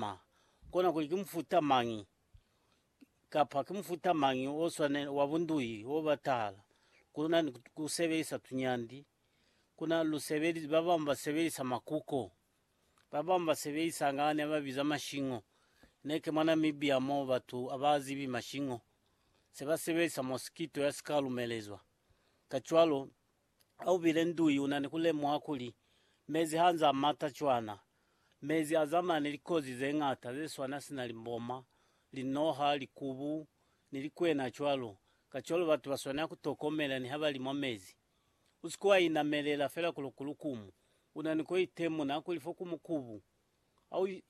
ma, kona kuli ki mufuta mañi kapa ki mufuta mañi o swanela wa bunduhi o batahala ku luna ni ku sebelisa tunyandi. Ku na lu sebelisa, ba bañwi ba sebelisa makuko, ba bañwi ba sebelisa nga ne ba biza mashingo. Ne ke mwa Namibia mo batu a ba zibi mashingo, se ba sebelisa mosquito ya si ka lumelezwa. Kacwalo, Ha u bile nduyi u na ni ku lemuha kuli mezi ha nz'a mata cwana. Mezi a zamana ni likozi ze ñata ze swana sina limboma, linoha, likubu, ni likwena cwalo. Kacwalo batu ba swanela ku tokomela niha ba li mwa mezi. U si ke wa inamelela fela kuli ku lukumu. U na ni ku itemuna kuli fo ku mukubu.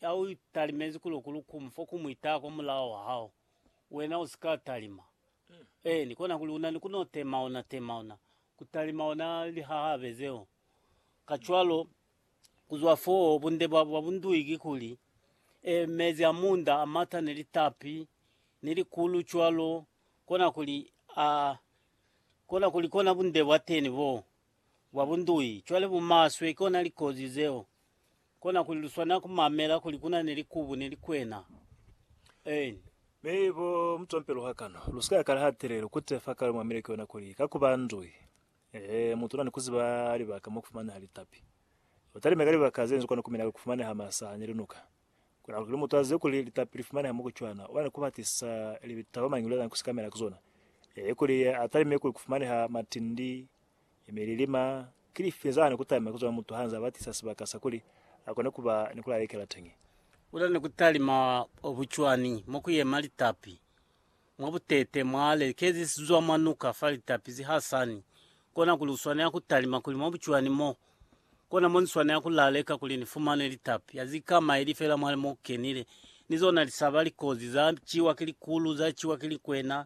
Ha u talimezi kuli u ku lukumi fo ku mu itaha kwa mulao wa hao, wena u si ka talima. Eeni, kona kuli u na ni ku no temauna temauna, ku talima ona lihahabe zeo. Kacwalo, ku zwa foo, bunde bwa bwa bundui ki kuli, ee, mezi a munda a mata ni litapi, ni likulu cwalo, kona kuli, a, kona kuli kona bunde bwa teni boo, bwa bundui. Cwale bumaswe, kona likozi zeo. Kona kuli luswanela kumamela kuli kuna ni likubu ni likwena. En. Mi bo mutompelo hakano, lusika yakala hatelelo kute fa kale muamile ki yona kuli ka kuba ndui, ee, mutu una ni kuziba libaka mo kufumaneha litapi. Batalime ka libaka zenzu kona kumina kufumaneha masa ni linuka. Kona kuli mutu azibe kuli litapi lifumaneha mo kucwana, una ni kubatisa libitaba mañi luli azange kusikamela ki zona, ee, kuli atalime kuli kufumaneha matindi, E mi lilima, ki lifi za ne ku talima ku zwa mutu ha nza batisa sibaka sa kuli a kone ku ba ni ku lalekela teñi? Ku na ni ku talima bucwani mo ku yema litapi mwa butete mwa lekezi si zwa mwa nuka fa litapi si ha sani, kona kuli u swanela ku talima kuli mwa bucwani mo, kona mo ni swanela ku laleka kuli ni fumane litapi ha si ka maili fela mwa mo ku kenile, ni zona lisaba likozi za ciwa ki likulu, za ciwa ki likwena,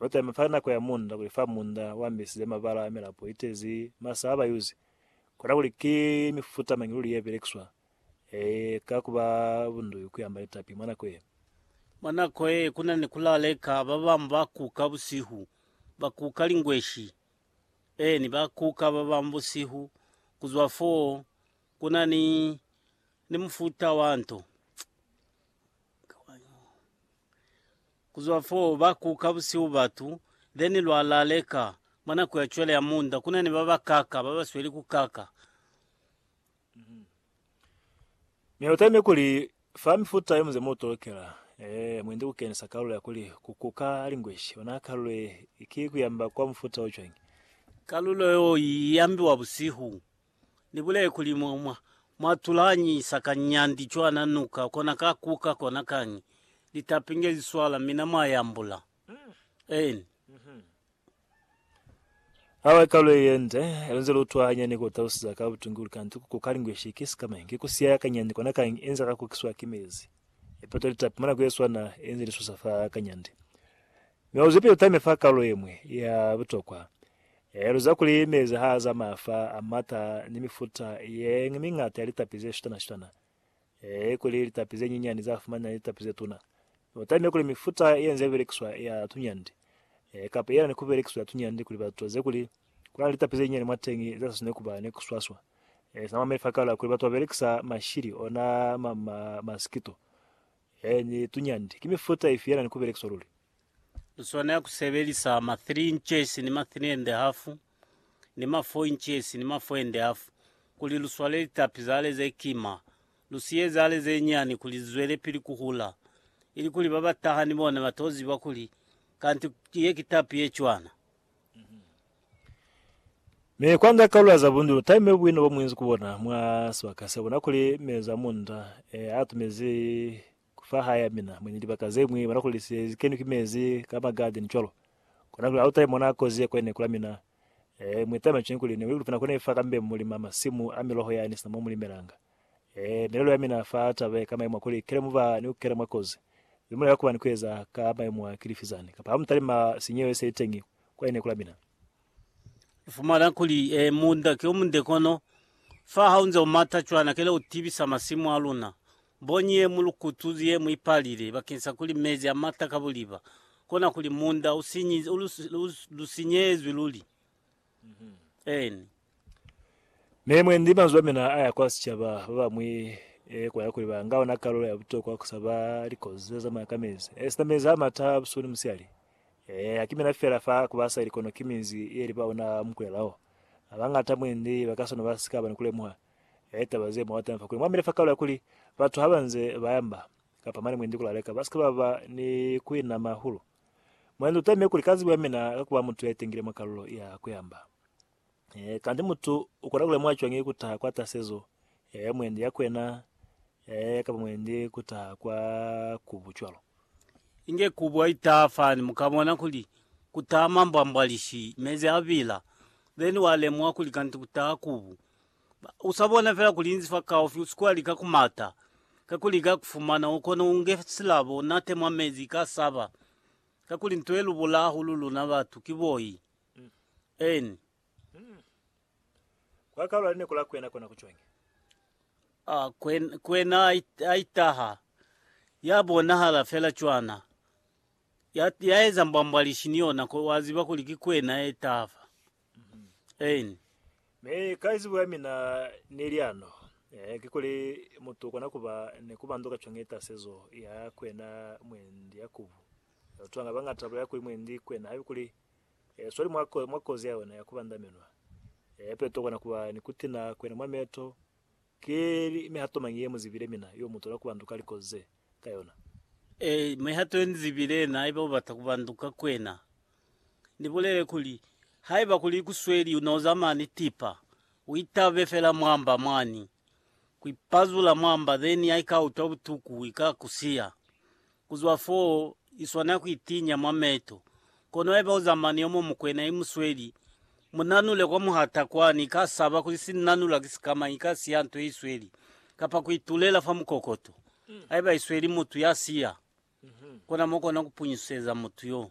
Lota ya mipala nako ya munda kuli fa munda wa mbisize mabala a milapo itezi masa a ba yuzi. Kona kuli ki mifuta mañi luli ye belekiswa e ka kuba bunduyu ku yamba litapi mwa nako ye? Mwa nako ye, ku na ni ku laleka. Ba bañwi ba kuka busihu, ba kuka lingweshi, eeni, ba kuka ba bañwi busihu. Ku zwa fo, ku na ni, ni mufuta wa nto. Ku zwa fo, ba kuka busihu batu, then lwa laleka. Mwa nako ya cwale ya munda, ku na ni ba ba kaka, ba ba sweli ku kaka. Mi lu taime kuli, fa mifuta ye muze mu tolokela, ee, mu ende ku kenisa kalulo ya kuli, ku kuka lingweshi. Ona kalulo ye, ki ku yamba kwa mufuta o cwañi? Kalulo yo i yambiwa busihu. Ni bulele kuli mwa, mwa, mwa tulanyisa ka nyandi cwana nuka, kona ka kuka, kona kañi. Litapi nge li swala, mina mwa yambula. Eeni. Awe ka lwe yende, lunze lu utwa hanyani ku talusiza ka butungulu, kanti ku kuka lingweshi ki sikama, ki ku siaya ka nyandi kona kañi, inze ka kukiswa ki mezi. Ipeto litapi mwa nako ye swana, inze li susa fa ka nyandi. Mi auze ipeto time fa kalu yemwe ya butokwa, Helo za kuli mezi ha a zamaya fa a mata ni mifuta ye miñata ya litapi ze shutana-shutana, ee, kuli litapi ze nyinyani za fumanela litapi ze tuna, u tamile kuli mifuta ye nze belekiswa ya tunyandi, ee, kapa yelani ku belekiswa ya tunyandi kuli batu ba zibe kuli ku na ni litapi ze nyinyani mwateñi ze sa swaneli ku ba ni ku swaswa. Ee, sina mwameli fa kala kuli batu ba belekisa mashili, ona ma, ma, masikito, ee, ni tunyandi. Ki mifuta ifi yelani ku belekiswa luli? Lu swanela ku sebelisa ma 3 inches ni ma 3 and half ni ma 4 inches ni ma 4 and half kuli lu swale litapi za hale ze kima, lu siye za hale ze nyani kuli zi zwelepili ku hula, ili kuli ba ba taha ni bona ba to ziba kuli kanti ye ki tapi ye cwana. Mi kwa nda kaula za bundulo, taime buino bo muinzi ku bona mwa sibaka sebo, na kuli mezo a munda e a tumezi Fa hae ya mina, mwendi libaka zeñwi bona kuli se kenwi ki mezi ka ma garden cwalo. Kona kuli hauta imona kozi ye kwene kula mina. Ee, mwi tama cwani kuli ni wikulupina kona ifa kambe mulima masimu a miloho yani sina mo mulimelanga. Ee, milelo ya mina fa taba ye ka maimo a kuli kele muba ni kukena mwa kozi. Ze mulela kuba ni kueza ka maimo a ki lifi zani? Kapa hamutalima sinyeo ye se iteñi kwene kula mina? Ufumana kuli, ee, munda ki omunde kono fa haunze umata cwana kele utibisa masimu aluna. Mbonyi ye mu lukutu ye mu ipalile bakeng sa kuli mezi a mata ka buliba, kona kuli munda u sinyi, u lu, lu, lu sinyehezwi luli. Eeni. Mi mwendi manzwi a mina a ya kwa sicaba, ba bamwi e kwa ya kuli ba nga ona kalulo ya butokwa ku saba likozi ze zamaya ka mezi, esita mezi a mata a busuku ni musiyali. Ee, ha ki mina feela fa ku ba sa ili kono ki minzi ye li ba ona ha mu kulela o. Ba bañata mwendi ba ka sona ba si ka ba ni ku lemuha. Ee, taba ze mwa teñ'a fa kuli mwa mile fa kalo ya kuli batu ha ba nze ba yamba, kapa mane mwendi ku laleka, ba si ke ba ba ni ku inama hahulu. Mwendi u teme kuli ka zibo ya mina ka ku ba mutu ya itengile mwa kalulo ya ku yamba. Ee, kanti mutu u kona ku lemuha cwañi ku taha kwa tasezo ya mwendi ya kwena, ee, kapa mwendi ku taha kwa kubu cwalo? Inge kubu ha i taha fani, mu ka bona kuli ku taha mambwambwalishi, mezi a bila. Then wa lemuha kuli kanti ku taha kubu. Usabona fela kulinzi fa kaufi usikuwa lika kumata kakuli ika kufumana ukona unge silabo unate mwa mezi ika saba kakuli nto yelubula hahulu luna batu ki boi eni Kwa kaula lineko la kwena kona ku cwenge. Ah, kwen, kwena aitaha ya bonahala fela cwana ya, ya eza mbwambwalishi ni yona ko waziba kuli ki kwena etafa Amen. Mi ka izibo ya mina neli ano, eh, kikuli mutu ukona kuba ni kubandu ka cwani itasezo ya kwena mwendi ya kubu. Batu banga bangata baya kuli mwendi kwena haiba kuli eh, swali mwa, mwa kozi ya ona ya kubandaminwa. Eh, peto ukona kuba ni kutina kwena mwa meto, Ki mihato mañi ye mu zibile mina yo mu tola ku banduka likozi ze ka yona? Ee, mihato ye ni zibile yena, haiba u bata ku banduka kwena, ni bulele kuli, Haiba kuli ku sweli u noza mani tipa, u itabe fela mwamba mwani, ku ipazula mwamba, then ha i ka utwa butuku, i ka ku siya. Ku zwa fo, i swana ku itinya mwa meto. Kono haiba u zamana ni yo muñwi mukwena, i mu sweli. Mu nanule kwa muhata kwani. I ka saba kuli si nanulwa ki sikamañi, i ka siya nto ye i sweli, kapa ku itulela fa mukokoto. Haiba i sweli mutu ya siya, kona mo kona ku punyuseza mutu yoo.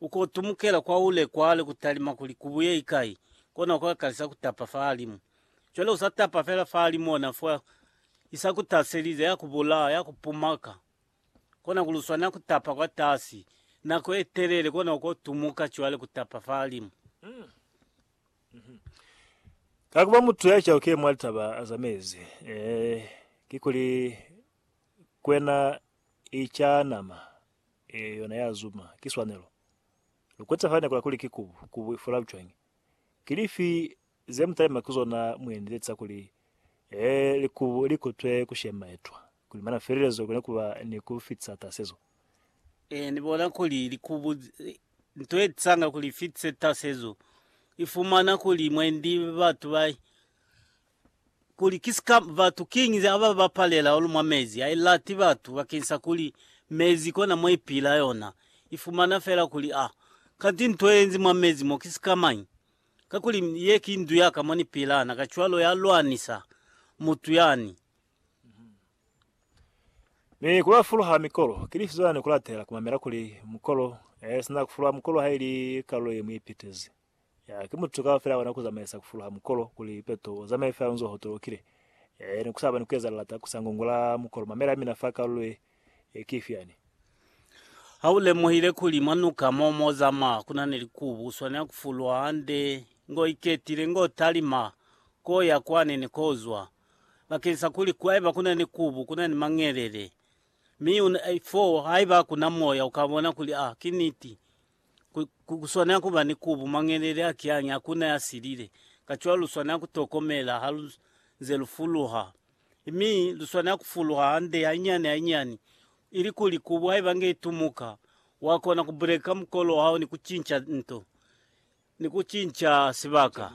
Ukutumukela kwa ule kwale kutalima kuli kubuye ikai, kona ukakalisa kutapa fahalimu. Cwale usatapa fela fahalimu ona fo isakutaselize, yakubulaa, yakupumaka. Kona kuli uswanela kutapa kwatasi nako etelele kona ukotumuka cwale kutapa fahalimu. Kakuba mutu yacaukile mwa litaba azamezi, ee, kikuli kwena I ca nama, ee, yona ya zuma. Ki swanelo. Lu kwete fa nekola kuli ki kubu, kubu i fula cwañi. Ki lifi ze mu talima ki zona mu eneletsa kuli, ee, likubu li kutwe ku shema etwa, kuli mana felelezo kone ku ba ni ku fitisa tasezo? Ee, Ni bona kuli likubu, nto ye tisanga kuli i fitise tasezo, i fumana kuli mwendi batu ba kuli ki sika batu kiñi ze aba ba palela or mwa mezi, a i lati batu bakeng sa kuli mezi kona mo i pila yona, i fumana fela kuli a, kanti nto ye enzi mwa mezi mo ki sika mañi? Kakuli ye ki ndu ya ka mo ni pilana, kacwalo ya lwanisa mutu yani. Mi ku ba fuluha mikolo, ki lifi zona ni ku latela ku mamela kuli mukolo, e sina ku fuluha mukolo ha i li kalulo ye mu ipitezi. Ya, ki mutu kaba fela ona kuzamaisa kufuluha mukolo kuli peto uzamaye fela unzo hotolokile. Ya, yani kusaba ni kueza lilata kusa ngongola mukolo. Mamela mina fa kalulo ye, ye ki ifi yani? Ha ulemuhile kuli mwa nuka mo mozama kuna ni likubu, uswanela kufuluha hande ngo iketile, ngo talima ko ya kwani ni ko uzwa, bakensa kuli haiba kuna ni kubu, kuna ni mangelele. Mi una, foo haiba kuna moya, ukabona kuli a ki niti. Ku, ku, ku swanela ku ba ni kubu, mangelele a kiange, hakuna ya silile. Kacwalo lu swanela ku tokomela ha lu nze lu fuluha. Mi lu swanela ku fuluha hande, hainyani hainyani, ilikuli kubu haiba nge i tumuka, wa kona ku buleka mukolo wa hao ni ku cinca nto, ni ku cinca sibaka.